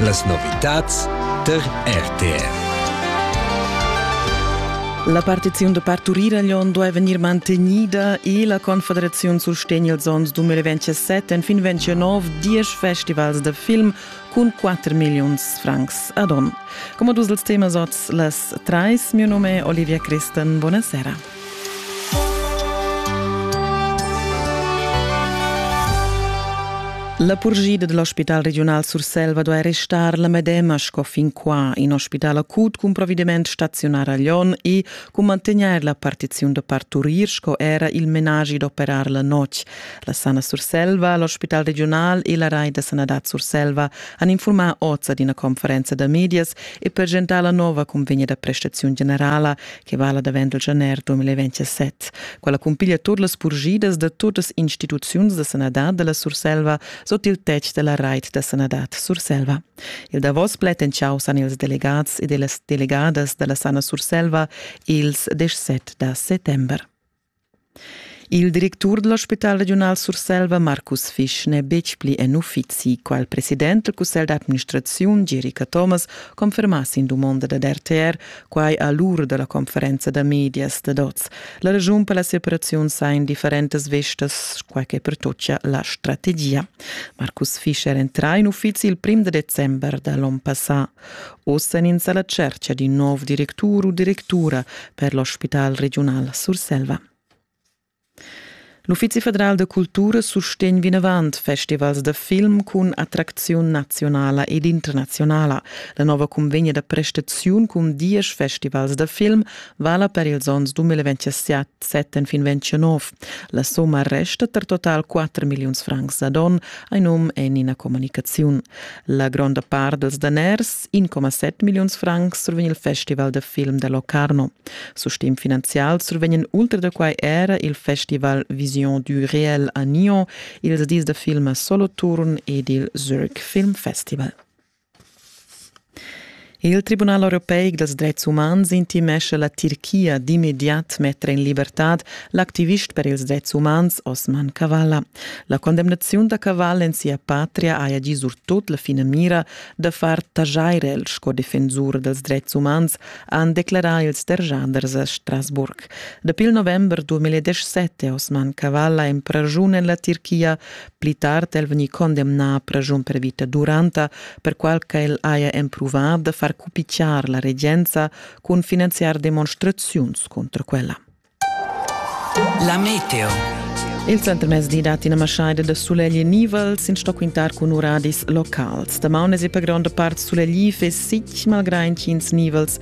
Las novitads tar RTR. La partiziun da parturir a Lyon duai vegnir mantegnida e la Confederaziun sustegna ils onns 2027 en fin 29 diesch festivals da film cun 4 milliuns francs ad onn. Come dus els temas oz las trais, mio nome è Olivia Christen. Buonasera. La purgida dal Ospital regiunal Surselva duai restar la medema sco fin qua. In ospital acut cun provvediment staziunar a Lyon e cun mantegnair la partiziun da parturir sco era il menagi d'operar la notg. La Sana Surselva, l'ospital regiunal e la rai da sanadad Surselva han infurmà oz ad ina conferenza da medias e presentar la nova convegna da prestaziun generala che vala davent il janer 2027. Quella cumpiglia tut las purgidas da tutas instituziuns da sanadad della Surselva sot il tetg della reit da sanadad Surselva. Il davos plet en ciao san ils delegats e deles delegadas della Sana Surselva ils 17 da settember. Il directur da l'ospital regiunal Surselva Markus Fisch n'è betg pli en uffizi. Qual president del cussegl d'administraziun Gieri Cathomas confermà sin dumonda dad RTR quai a l'ura da la conferenza da medias dad oz. La ragiun per la separaziun sa in differentas vestas, quai che pertocchia la strategia. Markus Fisch era entrà in uffizi il prim da december da l'onn passà. Ossa ins alla cerca di nov directur u directura per l'ospital regional Surselva. L'Uffizi federal da cultura sustegn vinavant festivals da film cun attracziun nazionala ed internazionala. La nova convegna da prestaziun cun diesch festivals da film vala per ils onns 2027 Setten fin 29. La somma resta per total 4 milliuns francs ad on, ein um en ina comunicaziun. La gronda part dels daners, 1,7 milliuns francs, survegn il festival de film de Locarno. Su stim finanzial survegnen ultra da quai era il festival Vision du Réel a Nyon, ils dis de film Soloturn ed il Zurich Film Festival. Il Tribunal europeic dals dretgs umans intimescha la Tirchia d'immediat metter en libertad l'activist per ils dretgs umans Osman Kavala. La condemnaziun da Kavala en sia patria haja gì surtut la finamira da far taxair el sco defensur dals dretgs umans, han declarà ils derschaders a Strasburg. Dapi il november 2017 è Osman Kavala empraschun en la Tirchia Pli tard è el vegnì condemnà a praschun per vita duranta, perqual ch'el haja empruvà da far cupicciar la regenza cun finanziar demonstraziuns contro quella. La meteo. Il centrmezdi dat ina maschaida da sulegl nivel sin sto quintar cun uradis locals. Damaun es per gronda part sulegl e sic, malgrain ch'ins nivels